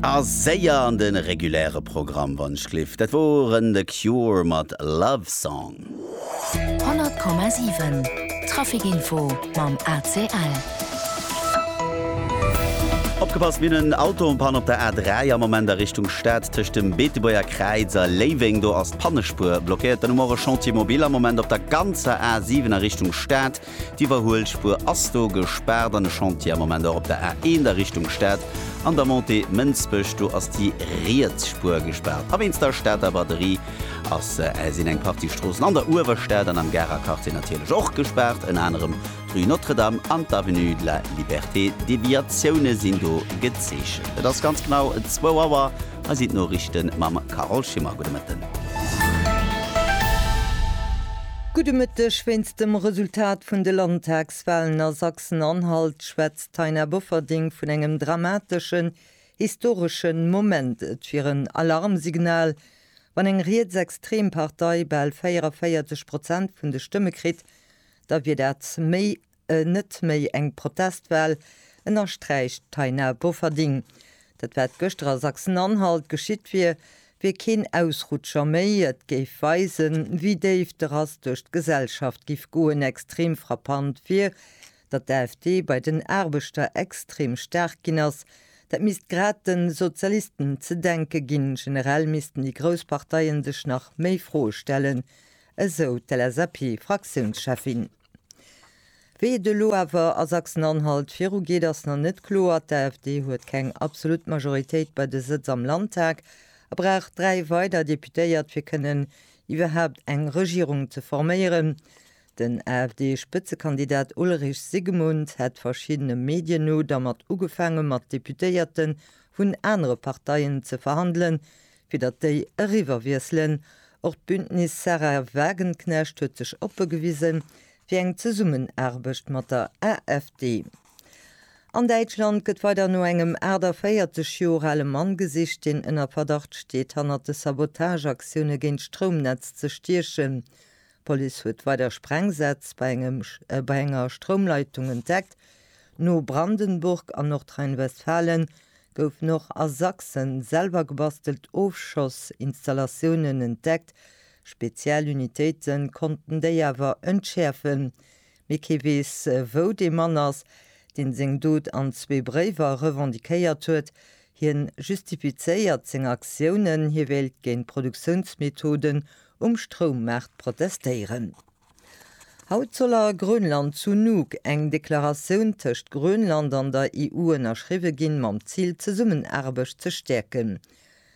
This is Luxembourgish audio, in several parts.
A séier an de reguläre Programm, wann ech gleef. Dat woren The Cure mat Love Song. 100,7 Traficinfo mam ACL. Opgepasst, mir hunn en Auto en Panne op der A3 am Moment a Richtung Stad tëscht dem Beetebuerger Kräiz a Léiweng. Do ass d'Pannespuer blockéiert. Dann hu mer och e Chantier mobile am Moment op der ganzer A7 a Richtung Stad. D'Iwwerhuelspuer ass do gespaart an e Chantier am Moment och op der A1 a Richtung Stad. An der Montée Mënsbech, do ass déi riets Spuer gespaart. A wéinst der Stater Braderie ass, sinn eng Partie Stroossen an der Uewerstad an am Garer Quartier natierlech och gespaart. Ënner anerem d'Rue Notre-Dame an d'Avenue de la Liberté. Deviatioune sinn do gezeechent. Et ass ganz genau zwou Auer. Hei sinn d'Noriichte mam Carole Schimmer. Gudde Mëtten. Gudde Mëtteg. Wéinst dem Resultat vun de Landtagswalen a Sachsen-Anhalt schwätzt d'Taina Bofferding vun engem dramateschen, historeschen Moment. Et wier en Alarmsignal, wann eng rietsextrem Partei bal 44 Prozent vun de Stëmme kritt, da wier dat méi Net méi eng Protestwal, ënnersträicht d'Taina Bofferding. Dat wat gëschter a Sachsen-Anhalt geschitt wier, wier keen Ausrutscher méi. Et géif weisen, wéi déif de Rass duerch d'Gesellschaft giff goen. Extrem frappant wier, datt d'AfD bei den Aarbechter extrem staark ginn ass. Dat misst grad de Sozialisten ze denke ginn. Generell missten déi grouss Parteie sech nach méi Froe stellen, esou d'LSAP-Fraktiounscheffin. Wéi et elo awer a Sachsen-Anhalt virugeet, ass nach net kloer. D'AfD huet keng absolut Majoritéit bei de Sëtz am Landtag a brauch dräi weider Deputéiert, fir kënnen iwwerhaapt eng Regierung ze forméieren. Den AfD-Spëtzekandidat Ulrich Sigemund hätt verschiddene Medien no dermat ugefaange mat Deputéierte vun anere Parteien ze verhandelen, Fir datt déi eriwwerwiesselen. Och d'Bündnis Sahra Wagenknecht huet sech oppe gewise fir eng Zesummenaarbecht mat der AfD. An Däitschland gëtt weider no engem 48 Joer ale Mann gesicht, deen ënner Verdacht steet, hannert de Sabotageaktioune géint d'Stroumnetz ze stiechen. D'Police huet weider Sprengsätz bei enger Stroumleitung entdeckt. No Brandenburg an Nordrhein-Westfalen goufen och a Sachsen selwer gebastelt Ofschoss-Installatiounen entdeckt. Spezial Unitéite konnten déi awer entschäerfen. mee kee weess wou dee Mann ass, deen seng Dot an zwee Bréiwer revendiquéiert huet. Hien justifizéiert seng Aktiounen, hie wéilt géint Produktiounsmethoden um Stroummaart protestéieren. Haut soll a Grönland zu Nuuk eng Deklaratioun tëscht Grönland an der EU ënnerschriwwe ginn, mam Zil d'Zesummenaarbecht ze stäerken.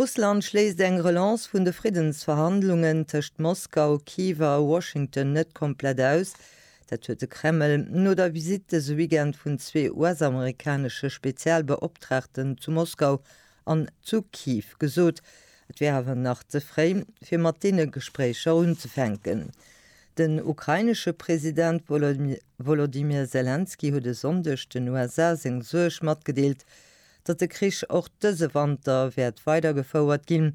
Russland schléisst eng Relance vun de Friddensverhandlungen tëscht Moskau, Kiew a Washington net komplett aus. Dat huet de Kreml no der Visitt dëse Weekend vun zwee US-amerikanesche Spezialbeoptraagten zu Moskau an zu Kiew gesot. Et wär awer nach ze fréi, fir mat deene Gespréicher unzefänken. Den ukrainesche President Wolodymyr Selenskyj huet e Sonndeg den USA seng Suerg matgedeelt, datt de Krich och dëse Wanter wäert weidergefouert ginn.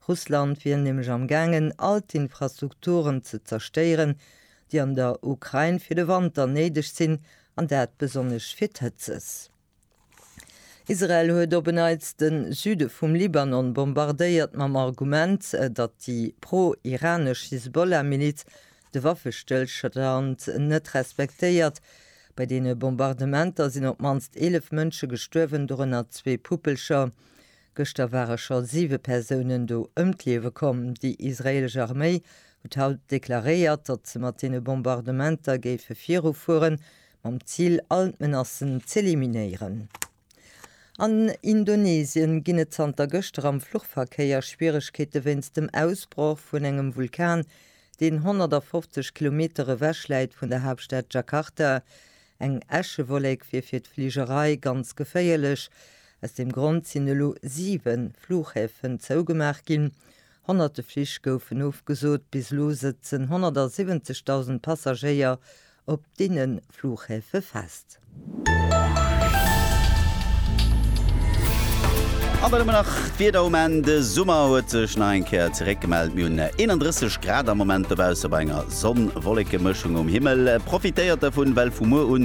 Russland wier nämlech am gaangen, all d'Infrastrukturen ze zerstéieren, déi an der Ukrain fir de Wanter néideg sinn, an dat besonnesch fir d'Hëtzes. Israel huet op en Neits de Süde vum Libanon bombardéiert, mam Argument, datt déi pro-iranesch Hisbollah-Miliz De Waffestëllstand net respektéiert. Bei deene Bombardementer sinn op d'mannst 11 Mënsche gestuerwen, dorënner zwee Puppelcher. Gëschter ware scho siwe Persounen do ëm d'Liewe komm. Déi israeelesch Arméi huet haut deklaréiert, datt se mat deene Bombardementer géife virufueren, mam Zil, all d'Menacen z'eliminéieren. An Indonesien ginn et zanter gëschter am Fluchverkéier Schwieregkeete wéinst dem Ausbroch vun engem Vulkan, deen 150 Kilometer ewech läit vun der Haaptstad Jakarta. Eng Äschewollek wier fir d'Fligerei ganz geféierlech. Aus deem Grond sinn elo 7 Fluchhäfen zougemaach ginn. Honnerte Flich goufen ofgesot, bis elo sëtzen 170.000 Passagéier op deene Fluchhäfe fest. An dann hu mer nach d'Wieder um Enn. De Summer huet sech nach eng Kéier zeréck gemellt. Mir hunn 31 Grad am Moment dobausse bei enger Sonn-Wolleke-Mëschung um Himmel. Profitéiert dervun, well vu muer u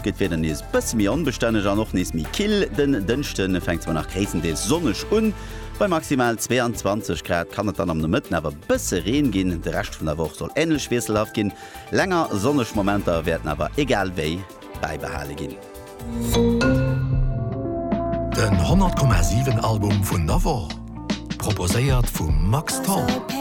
gëtt d'Wieder nees e bësse méi onbestänneg an och nees méi kill. Den Dënschde fänkt zwar nach gréisstendeels sonneg un, Bei maximal 22 Grad kann et dann am Nomëtten awer bësse Reen ginn. De Rescht vun der Woch soll änlech wiesselhaft ginn, länger sonneg Momenter wäerten awer egal wéi bäibehale ginn. Den 100,7 Album vun der Woch proposéiert vum Max Tholl.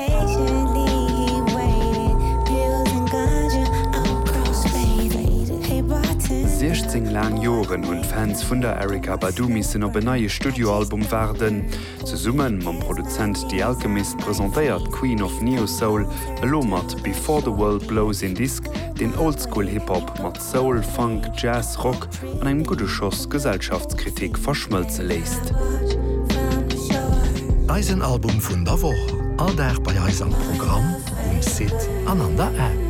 16 laang Joren hunn d'Fans vun der Erykah Badu missen op en neie Studioalbum waarden. Zesumme mam Produzent The Alchemist presentéiert d'Queen of Neo-Soul elo mat Before the World Blows een Disk, deen Oldschool-Hip-Hop mat Soul, Funk, Jazz, Rock an engem gudde Schoss Gesellschaftskritik verschmëlze léisst. Eisen Album vun der Woch, all Dag bei eis am Programm, um Site an an der App.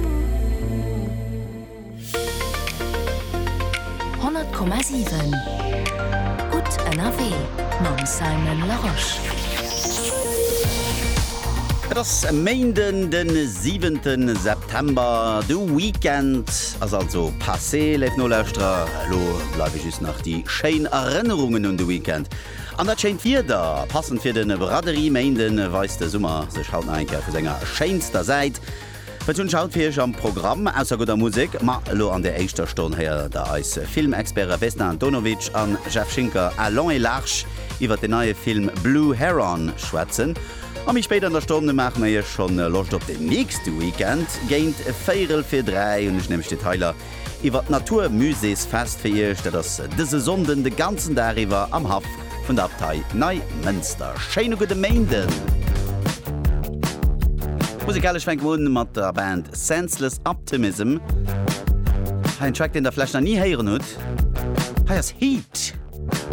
100,7 Gutt ënnerwee mam Simon Larosche. Et ass e Méinden, de 7. September. September, de Weekend ass also passé, léif Nolauschterer. Elo bleiwe just nach déi schéin Erënnerungen un de Weekend an dat schéint Wieder. Passend fir de Braderie-Méinde weist de Summer sech haut nach eng Kéier vu senger schéinster Säit. Wat hunn ech haut fir iech am Programm? Ausser gudder Musek, ma elo an der éischter Stonn héiert der eis Filmexperte Vesna Antonovic an Jeff Schinker à long et large iwwert den neie Film Blue Heron schwätzen. A méi spéit an der Stonn maache mer iech schonn Loscht op den nächste Weekend. Géint véierel vir dräi hunn ech nämlech Detailer iwwer d'Natur Musees Fest fir iech. Dat ass dëse Sonnden de ganzen Dag iwwer am Haff vun der Abtei Neimënster. Schéine gudde Méinden! Musikalesch fänke mer un mat der Band Senseless Optimism. Hei en Track, deen der vläicht nach ni héieren hutt. Hei ass Heat.